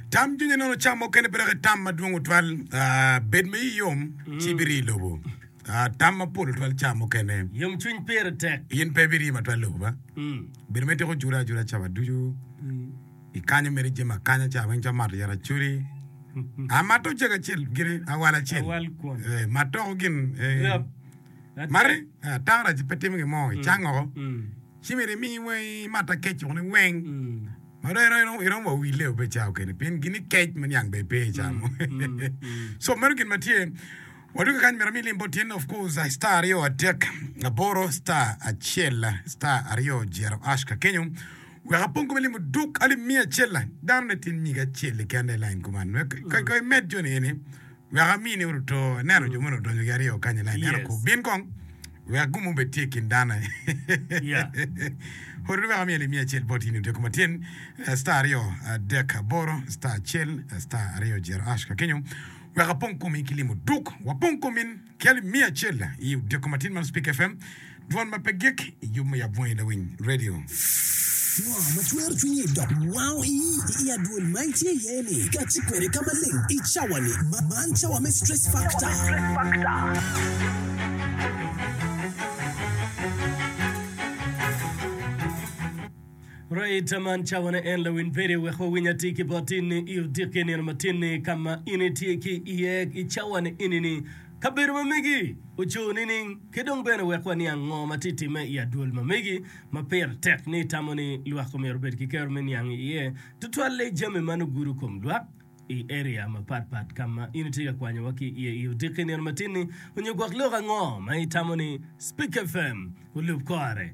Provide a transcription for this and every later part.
Tam cwinyi nono cam mukene pe dok itam madwong otwal. Ah, bed ma iyi yom, ci ibiri i lobo. Ah, tam mapol otwal cam mukene. Yomcwiny pire tek. In pe ibiri yim atwal lobo ba. Bedo ma ityeko jure ajura cawa ducu, ikanyo mere jami akanya ca weng calo mato yat acoli. Ah, mato ocego acel gire, awal acel. Awal kwon. Eh, matoko gin. eh, Grap. Ate- Mari, eh, atang rac pe timo gin mo, icango oko. Mm. Ci myero imi weng imat akec woko ni weng. Mm. Ma dong iromo iromo iromo wa wille obe ca okene pien gini kec ma niang be pe ca mo. so meno gin ma tye. Waduka kany mera mi lim bot tyen of course I star aryo atek aboro star acel star aryo jero ash ka kenyo wek apong kome limo duk alim miya acel dano ne tin nyige acel kende lain kuman wek ka ka imed joni eni Wek amini uru to, ineno jo moni odonyo gi aryo kany i lain, en okob, Bin kong, wek gum obed tye i kin dano ni. Oruni wek amiye lim miya acel bot in i otyeko ma tyen, star aryo adek aboro star acel star aryo jero ash ka kenyo wek apong komi ki limo duk wapong komin ki alim miya acel i otyeko ma tyen man Speak FM. Dwol ma pe gik i yub me yab bwungi lawiny radio. Ngo ma twero cwinyi dok wango iyi i adwol ma itye iye ni kati kwede ka maleng i cawa ni? Man cawa me stress factor. Right man cawa ne en lawiny radio wek wa winy atir ki bot in ni i odiki nino matin ni kama in itye ki iye i cawa ni ini ni. Kabedo ma megi ocur nining, ki dong bene wek waniang ngo ma tye timme i adwol ma megi ma pire tek ni itamo ni lwak omyero obed ki kero me niang i iye, tutwalle jami man ogudo kom lwak i area mapat pat ka ma in itye ka kwanyowa ki iye i odiki nino matin-ni, onyo gwok lok ango ma itamo ni Spik FM olub kore?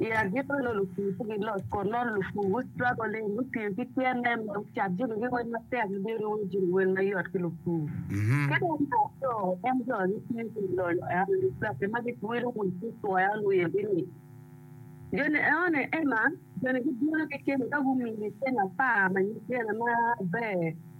I agikki onongo lupur ci giloc kun nongo lupur gu struggle-li, gutiyo ki tyene me cat jami ki wel matek ma bino romo jami ki wel mayot ki lupur. Ka dong me aryo, en jo ma gitiyo ki lonyo eno ni peke ma gitwelo wil ki twoya onongo oyebi ni, joni enoni Emma joni gibino ki cente ka gumiyi cente apar ma nyig dyene maber,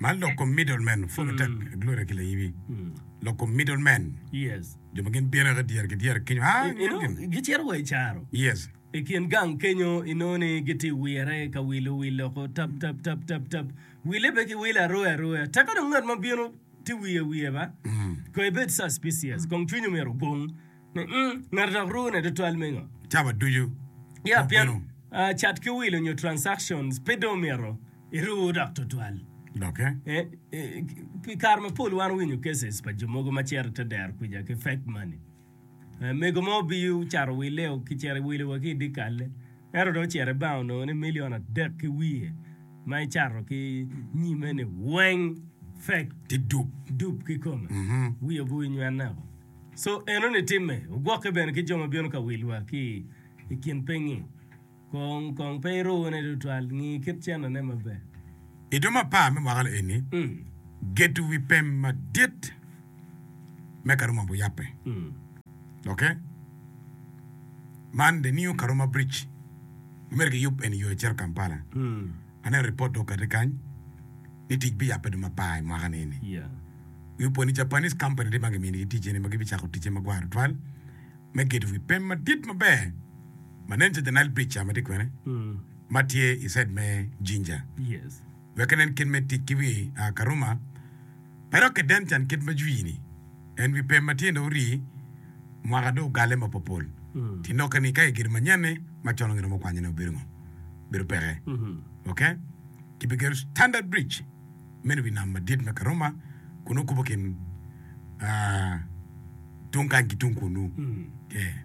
Man loko middleman, full attack gloria ki layibi loko middleman jo ma gin bino eka dyere ki dyere kenyo aa i nget gin. Gicito wa i caro. Yes. I kin gang kenyo inongo ni gitye i wire ka wilo wil loko tap tap tap tap tap wille pe ki wilo aroyo aroya teka dong ngat ma bino tye wiye wiye ba kong ibed suspicious kong cwinyi myero ogung Ngati dok ruu ne tutwal me ngo? Cawa ducu Yeah, pien Obedo. ah, cat ki wilo nyo transactions pe dong omyero iruu dok tutwal. doke. Eh, eh, pi kare mapol wan winyo cases pa jo mogo ma cito ite dero kwica ki fake money. Eh, mego mo obiyo caro wille o ki cero iwilo wa ki idikalle. Ento dong ocito ibank onongo ni million adek ki wiye ma icato ki nyime ni weng fake Ti dub. dub ki kome. Mhm. Wiye obuyo nywene o. Co enoni timme, ogwokke bene ki jo ma bino ka wilwa ki i kin pingngi. Kong, kong pe irune tutwal, ngi kit cennone maber. I dong mapar me mwaka-ni eni, gedo wi pem madit me Karuma ombo yabbe. Doki, man The New Karuma Bridge ma myero kiyub eni yo ecito Kampala. Aneno ripot dong okati kany ni tic biyabbe dong mapar i mwaka ni eni. Wi opwony ni Japanese company adit ma gimini ki ticce ni ma gibicako ticce ma gwaro twal me gedo wi pem madit maber ma nen calo the Nile Bridge ca ma tye kwene ma tye i side me Jinja wek enen kit me tic ki wi Karuma pe dok kiden can kit ma jwi ni. En wi pem ma tyene ori mwaka dong ogale mapopol. Ti noke ni ka igedo manyen-ni macon onge romo okwanyone obedo ngo? Bedo peke. Ok. Ki bi gedo standard bridge meno wi nam madit me Karoma kun okubo kin tung kany ki tung kunu. Yeah.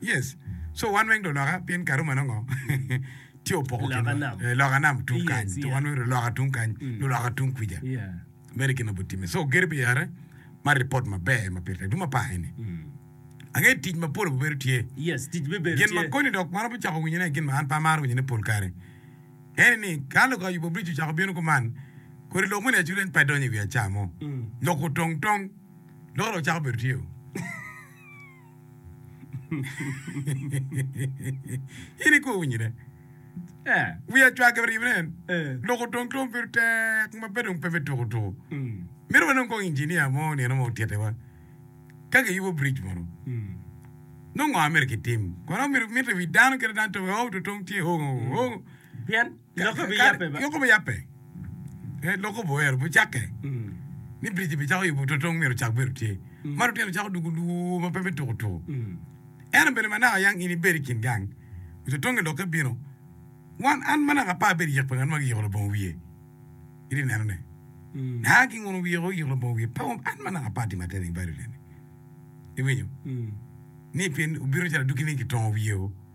Yes so wan weng do loka pien karuma nongo tye opoko kinwa loka nam tung kany so wan weng do loka tung kany nyo loka tung kwica mere gin ma bu time so gedo pi are ma report ma ber ma pire tek dong ma pake ni ange tic ma pol bu bedo tye gin ma koni dok ma romo cako winyo ne gin ma an pe amaro winyo ne pol kare ene ni ka lok ayubo bridge ocako bino kuman kodi lok moni acu leng pe donyo i wi aca mo lok otong tong lok dong cako bedo tye o. in ikobo winyine. Yeah. Wiya cwake pi ribine en. Eh. Lok otong ki obedo tek ma pe dong pe me tuku tuku. Mm. Mito wanong kong injinia mo nino mo tyetewa. Ka kiyubo bridge mono. Mm. Nongo ngo amito kitim? Kono mito mito wi dano kit dano to oh to tong tye oh oh. Pien Lok obiyabbe, ee, lok oboero bicakke, ni biric-ci bicako yubo totong myero ocak bedo tye, ma lutino cako dugo lwor ma pe me tuko tuko. Ento bene ma naka yang in ibedo i kin gang, wi totong-nge lokke bino, wan, an ma naka apar abedo yek pa ngat ma giyiko labongo wiye, iri inenone, naka ginguno wiye woko giyiko labongo wiye, pe an ma naka apar timo atir i nge bal i odeni, iwinyo, ni pien obino calo adwogi ni gitongo wiye-o.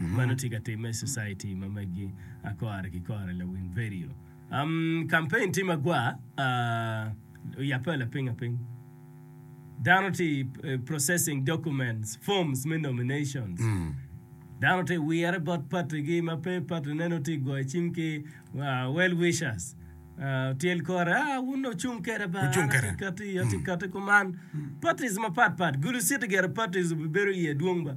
Mano tye ka timme i Society ma megi a kore ki kore lawiny vedio. Campaign tye ma gwa a oyabbe lapinga piny. Dano tye processing documents, forms me nominations. Dano tye wire bot party gi ma pe party ne nongo tye goyo cim ki well wishers. Tyel kore a wun dong wucung keda ba an atye kati atye kati kuman. Parties mapat pat gulu city gire parties obi bedo iye dwong ba.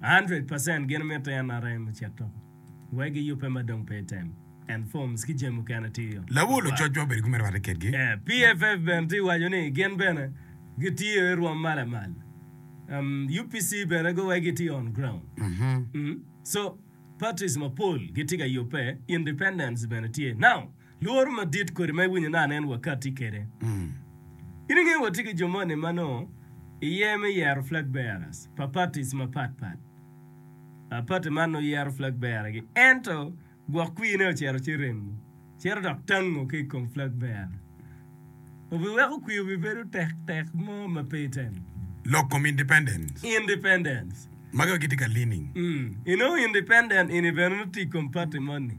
100 percent gin mitte en arem ocit toko wek giyubbe ma dong pe item and forms ki jami mukene tiyo Lawo lococ ma obedo ki me rwatte kedgi. PFF bene tye waco ni gin bene gitiyo i rwom ma lamal. Um, UPC bene go wai gitye on ground. Mhm. Um, so parties mapol gitye ka yubbe, independents bene tye. Now, Lworo madit kodi ma iwinyo nano en wakati kede. In ingeyo watye ki jo moni ma nongo iye me yero flag bearers pa parties mapat pat. Party man nongo yero flag bearer gi ento gwok kwir ne ocito ci remo cito dok tango ki ikom flag bearer. Obiweko kwir obibedo tek tek mo ma pe itemo. Lok kom independence. Independence. Magi wa gitye ka leaning. Inongo independent ini bene nongo tye ikom party moni.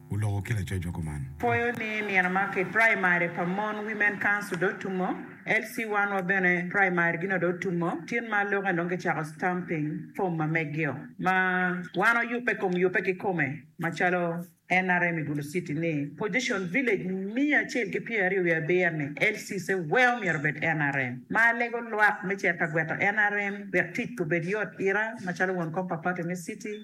oloko ki lacocwa kuman. Pwoyo ni nino ma ki primary pa mon women council dong otumo, LC one wa bene primary gi no dong otumo, tin ma lok eni dong ki cako stamping form ma megio ma wan wa yubbe kom yubbe ki kome ma calo nrm i Gulu city ni position village miya acel ki pyera aryo wiye abiro ni LC se weo myero obed nrm ma alego lwak me cito ka gweto nrm wek tic pe obed yot ira ma calo won kom pa party me city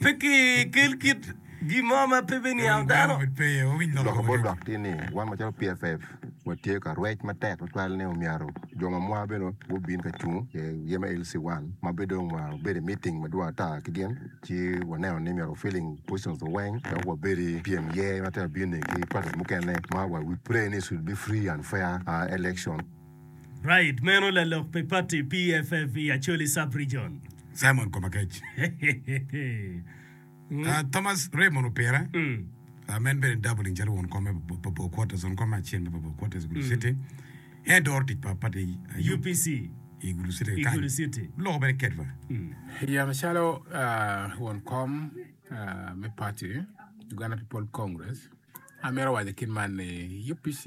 Pe kikel kit gin mo ma pe biniang dano. Lok bot lwak tye ni, wan macalo PFF watye ka rwec matek tutwal ni omyero jo ma mwa bene gubin ka cung i aye me LC one ma bed dong wa obedo i meeting madwong ata ki gin ci waneno ni myero wa filling positions wa weng dok wabed i pyem iye ma te wabin ni ki parties mukene ma wa we pray ni it should be free and fair election. Right meno lalok pi party PFF i Acholi Sub Region. Simon Komakec. Ah, Thomas Raymond Opira, Mm. ah, ma en bene dabbling calo won kom me Papua Quarters, won kom me acel me Papua Quarters i Gulu City. En doro tic pa pati ah, UP UPC. i Gulu City I kany. Gulu City. Loko bene ketwa. Yam calo ah, won kom ah, me pati Uganda People Congress, amito waco kit man ni UPC